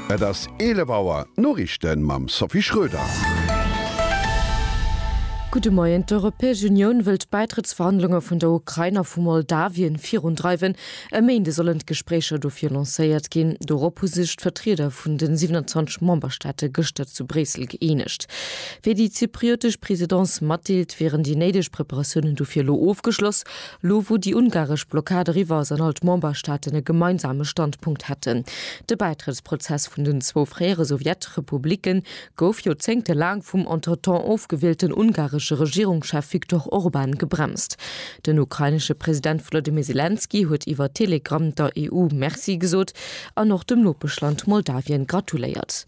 Et ass 11 Auer, d'Noriichte mam Sophie Schröder. Gudde Moien, D'Europäesch Unioun wëllt d'Bäitrëttsverhandlunge vun der Ukrain a vu Moldawien virundreiwen. E Méinde sollen d'Gespréicher dofir lancéiert ginn. Dorop hu sech d'Vertrieder vun de 27 Memberstaate gëschter zu Bréissel gëeenegt. Wéi déi zypriotesch Presidence matdeelt, wieren déi néideg Preparatiounen dofir elo ofgeschloss. Lo wou déi ungaresch Blockad eriwwer ass an all d'Memberstaaten e gemeinsame Standpunkt hätten. De Bäitrëttsprozess vun den zwou fréiere Sowjetrepublicke gouf Joerzéngte laang vum entretemps ofgewielten ungaresche Regierungschef Viktor Orban gebremst. Den ukrainesche President Wolodymyr Selenskyj huet iwwer Telegramm der EU Merci gesot an och dem Nopeschland Moldawien gratuléiert.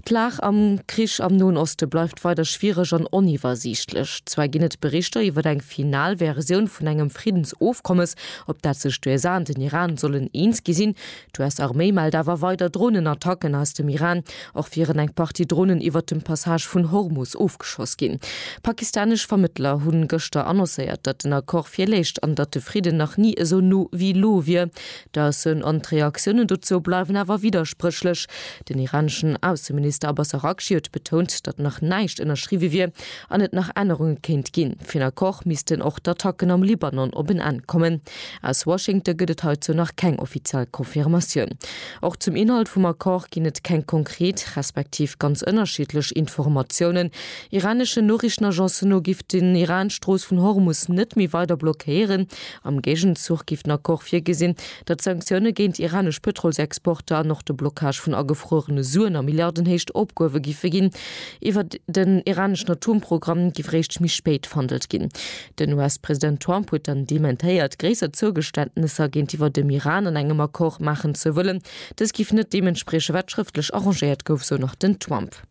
D'Lag am Krich am Noen Oste bleift weider schwiereg an oniwwersiichtlech. Zwar ginn et Berichter iwwer eng final Versioun vun engem Friddensofkommes, op dat sech d'USA an den Iran sollen eens gi sinn. D'US-Arméi mellt awer weider Dronenattacken aus dem Iran. Och wieren eng Partie Dronen iwwert dem Passage vun Hormus ofgeschoss ginn. Pakistanesch Vermëttler hunn gëschter annoncéiert, datt den Accord virléich an datt de Fridden nach ni esou no wéi elo wier. D'Aussen an d'Reaktiounen dozou bleiwen awer widderspréchlech. Den iraneschen Ausseminister Abbas Araghchi huet betount, datt nach näischt ënnerschriwwe wier an et nach Ännerunge kéint ginn. Fir en Accord missten och d'Attacken am Libanon op en Enn kommen. Aus Washington gëtt et heizou nach keng offiziell Confirmatioun. Och zum Inhalt vum Accord ginn et keng konkret, respektiv ganz ënnerschiddlech Informatiounen. Iraneschen Noriichtenagencen no giff den Iran d'Strooss vun Hormus net méi weider blockéieren, Am Géigenzuch géif den Accord virgesinn, datt d'Sanktioune géint iranesch Pëtrolsexporter an och de Blockage vun agefruerene Suen a Milliardenhéicht opgehuewe giffe ginn. Iwwer den iraneschen Atomprogramm giff réischt méi spéit verhandelt ginn. Den US-President Trump huet dann dementéiert, gréisser Zougeständnesser géintiwwer dem Iran an engem Accord maachen ze wëllen. Dës giff net deem entsprieche wat schrëftlech arrangéiert gouf, sou nach den Trump.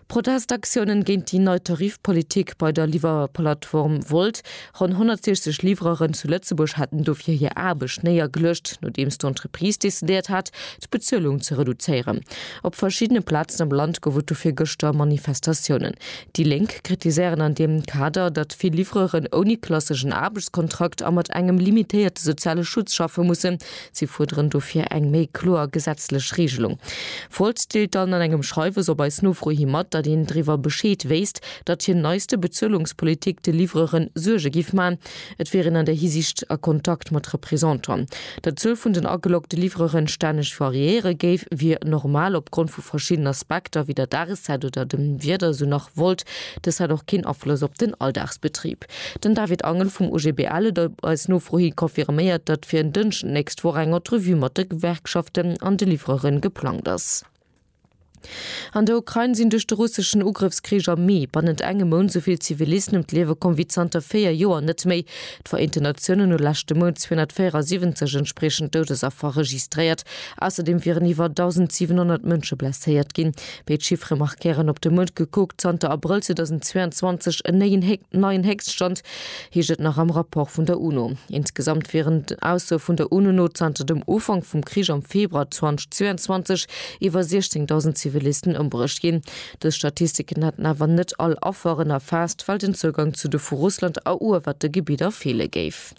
Protestaktiounen géint déi nei Tarifpolitik bei der Liwwerplattform Wolt. Ronn 160 Livreuren zu Lëtzebuerg haten dofir hir Aarbecht néiergeluecht, nodeems d'Entreprise decidéiert hat, d'Bezuelung ze reduzéieren. Op verschiddene Plazen am Land gouf et dofir gëschter Manifestatiounen. Déi Lénk kritiséieren an deem Kader, datt vill Livreuren ouni klasseschen Aarbechtskontrakt a mat engem limitéierte soziale Schutz schaffe mussen, Si fuerderen dofir eng méi kloer gesetzlech Reegelung. Volt deelt dann an engem Schreiwes op eis Nofro hi mat, datt een driwwer Bescheed wéisst, datt hir neiste Bezuelungspolitik de Livreuere Suerge géif man. Et wier een an där Hisiicht a Kontakt mat Representan. Datt d'Zuel vun den ageloggte Livreuere stänneg variéiere géif, wier normal opgrond vu verschidden Aspekter, wéi der Dageszäit oder dem Wieder, sou nach Volt. Dës hätt och keen Afloss op den Alldagsbetrib. Den David Angel vum OGBL huet op eis Nofro hi confirméiert, datt fir en Dënschden d'nächst Woch eng Entrevue mat de Gewerkschaften an de Livreuren geplangt ass. An der Ukrain sinn duerch de russeschen Ugrëffskrich am Mee bannent engem Mount sou vill Zivilisten ëm d'Liewe komm wéi zanter véier Joer net méi. D'Vereenten Natiounen hu leschte Mount 274 entspriechend Doudesaffer registréiert. Ausserdeem wieren iwwer 1.700 Mënsche blesséiert ginn. Béid Chiffere markéieren op de Muert gekuckt zanter Abrëll 2022 en néien Hék, neien Héchststand, heescht et nach am Rapport vun der UNO. Insgesamt wieren, Aussoe vun der UNO no, zanter dem Ufank vum Krich am Februar 2022 iwwer 16.000 Zivilisten ëmbruecht ginn. Dës Statistiken hätten awer net all Afferen erfaasst, well den Zougang zu de vu Russland eruewerte Gebidder feele géif.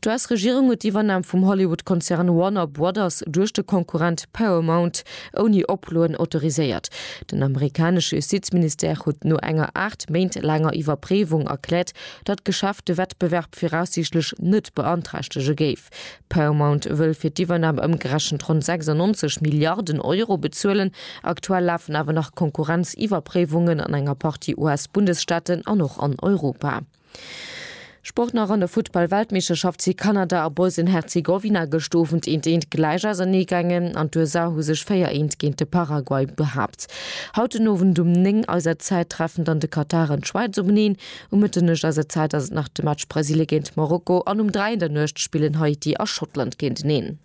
D'US-Regierung huet d'Iwwernam vum Hollywood-Konzern Warner Brothers duerch de Konkurrent Paramount ouni Oploen autoriséiert. Den amerikanesche Justizministère huet no enger aacht Méint laanger Iwwerpréiwung erkläert, datt d'Geschäft de Wettbewerb viraussiichtlech net beanträchtege géif. Paramount wëll fir d'Iwwernam ëmgerechent ronn 96 Milliarden Euro bezuelen. Aktuell lafen awer nach Konkurrenziwwerpréiwungen an enger Partie US-Bundesstaaten an och an Europa. Sport nach an der Futtball-Weltmeeschterschaft si Kanada a Bosnien-Herzegowina gëscht Owend eent eent gläich ausernee gaangen an d'USA hu sech 4 eent géint de Paraguay behaapt. Haut den Owend um 9 eiser Zäit treffen dann de Katar an d'Schwäiz openeen. Um Mëtternuecht eiser Zäit ass et nach de Match Brasilien géint Marokko an um 3 an der Nuecht spillen Haiti a Schottland géinteneen.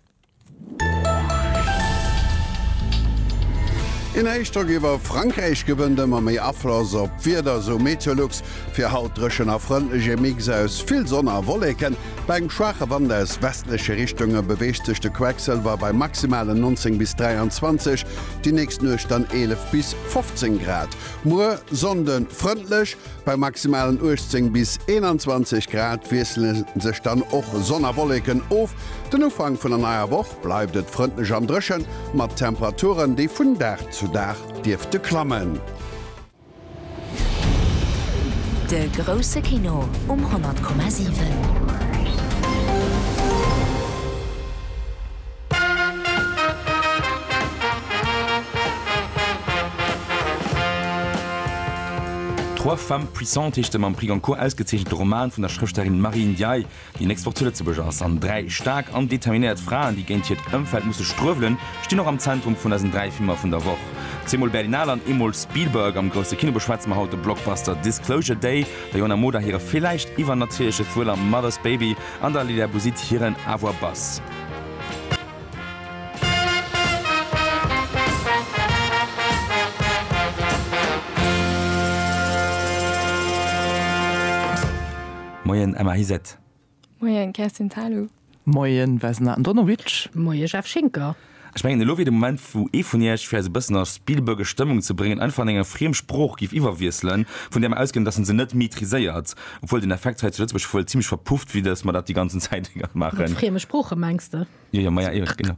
Een Héichdrock iwwer Frankräich gewënnt ëmmer méi Afloss op d'Wieder, esou Meteolux. Fir haut dréchen a frëndlech, e Mix aus vill Sonn a Wolleken. Bei engem schwaache Wand aus westleche Richtunge beweegt sech de Quecksëlwer bei Maximalen 19 bis 23, déi nächst Nuecht dann 11 bis 15 Grad. Muer Sonnde frëndlech. Bei maximalen 18 bis 21 Grad wiessele sech dann och Sonn a Wolleken of. Den Ufank vun der neier Woch bleift et frëndlech an dréchen, mat Temperaturen, déi vun Dag zu Dag dierfte klammen. De grousse Kino um 100,7. Trois femmes puissantes heescht de mam Prix Goncourt ausgezeechente Roman vun der Schrëfstellerin Marie Ndiaye, déi nächst Woch zu Lëtzebuerg ass. An dräi staark an determinéiert Fraen, déi géint hiert Ëmfeld musse struewelen, stinn och am Zentrum vun eisen dräi Filmer vun der Woch. Zweemol Berlinale an eemol Spielberg. Am grousse Kino beschwätze mer haut de Blockbuster Disclosure Day, der Johanna Moder hire villäicht iwwernatierleche Thriller Mother's Baby an der Lila Bouzid hiren Avoir Buzz. Moien Emma Hiset. Moien Kerstin Thalau. Moien Vesna Andonovic. Moien Jeff Schinker. Ech mengen elo wier de Moment wou ee vun iech fir eis e bëssen a Spielbergesch Stëmmung ze bréngen einfach an enger friem Sprooch giff iwwerwiesselen, vun där mer ausginn dass en se net maîtriséiert. Obwuel den Effekt hei zu Lëtzebuerg wuel zimlech verpufft wier, datt mer dat déi ganzen Zäit Mat maachen. frieme Sproochen, mengs de? Jo, jo, maja, eben, genau.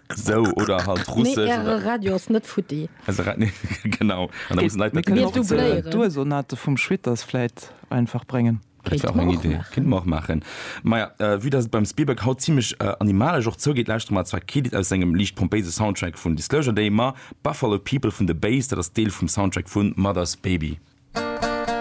Esou, oder halt Nee, Russesch oder. Äre Radio ass net futti. Eise Ra, nee, genau. An da mussen d'Leit Mir dat kënnen Mir och ze dubléieren. d'Ursonate vum Schwitters vläit einfach bréngen. Dat wär Kéinte och mer eng och Idee. maachen. Kéinte mer och maachen. Maja, vue datt et beim Spielberg haut zimlech animalesch och zougeet, lauschteren mer zwar kee Lidd aus sengem liicht pompéise Soundtrack vun Disclosure Day, ma Buffalo People vun The Bays, dat ass Deel vum Soundtrack vun Mother's Baby.